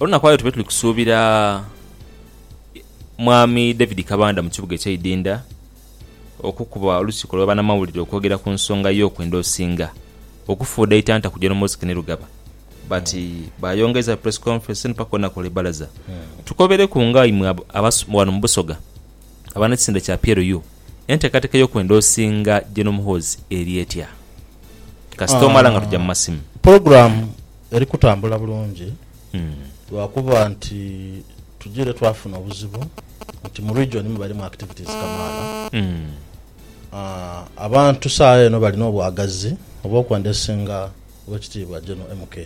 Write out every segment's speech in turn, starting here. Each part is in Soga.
Olunaku aye tube tuli kusuubira Mwami David Kabanda mu kibuga eky'eidinda okukuba olukiiko lwa banamawulire okwogera ku nsonga y'okwenda Osinga okufuudha eitanta ku John Mosque ni Lugaba. But bayongeza press conference eno paka olunaku olwe balaza. Tukobereku nga imwe wano mu Busoga abanekisinde kya PLU entekateka y'okwenda Osinga General Muhoozi eri etya? Kasita omala nga tuja mu masimu. Program. Eri kutambula bulungi lwakuba nti tujire twafuna obuzibu nti mu region mwe balimu activities kamaala. Abantu saagha eno bali n'obwagazi obw'okwendesinga Oweekitiibwa General MK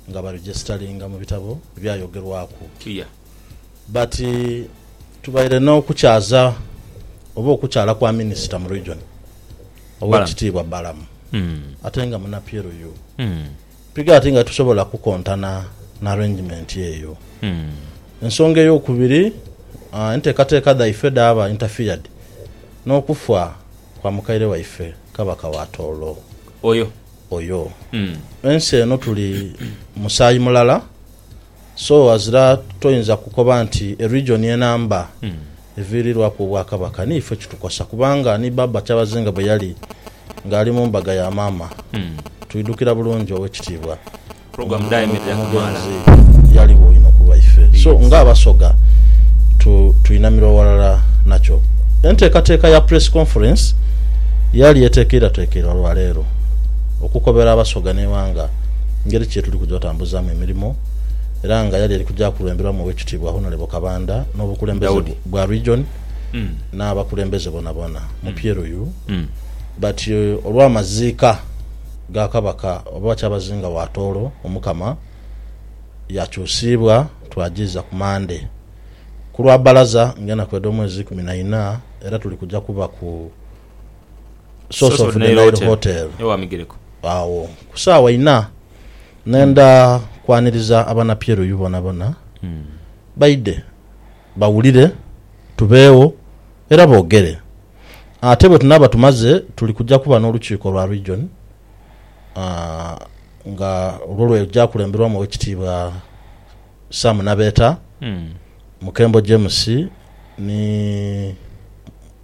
nga baregistalinga mu bitabo ebyayogerwaku. But tubaire n'okukyaza oba okukyala kwa Minisita mu Region, Owekitiibwa Balamu ate nga muna PLU, mpiga ati nga titusobola kukontana na arrangement eyo. Ensonga ey'okubiri, enteekateeka dhaife dhaaba interfered n'okufa kwa mukaire waife Kabaka wa Tooro oyo. Ensi eno tuli musaayi mulala So ghazira toyinza kukoba nti eregion ye namba eviirirwaku Obwakabaka. Ni ife kitukosa kubanga ni Baaba Kyabazinga bwe yali ng'ali mu mbaga ya maama, twidhukira bulungi Owekitiibwa omugenzi yaligho inho ku lwaife. So ng'Abasoga twinamira ghalala nakyo. Enteekateeka ya Press Conference yali etekeirwatekeirwa lwa leero okukobera Abasoga n'eighanga engeri ki yetuli kuja otambula. okwetambuzaamu emirimo era nga yali eri kuja kulemberamu Owekitiibwa Honorable Kabanda n'obukulembeze bwa Region n'abakulembeze bonabona mu Pieruyu but olw'amaziika ga Kabaka oba Kyabazinga wa Tooro Omukama yakyusiibwa twajiiza ku Monday ku lwa Balaza nga enaku edh'omwezi ikumi na ina era tuli kuja kuba ku Source of the Nile Hotel agho ku saawa ina. Nenda kwaniriza abanapyeruyu bonabona baidhe bawulire, tubeegho era boogere. Ate bwe tunaaba tumaze, tuli kuja kuba n'olukiiko lwa region nga lwo lweja kulemberwamu Owekitiibwa Sam Nabeeta, Mukembo James ni.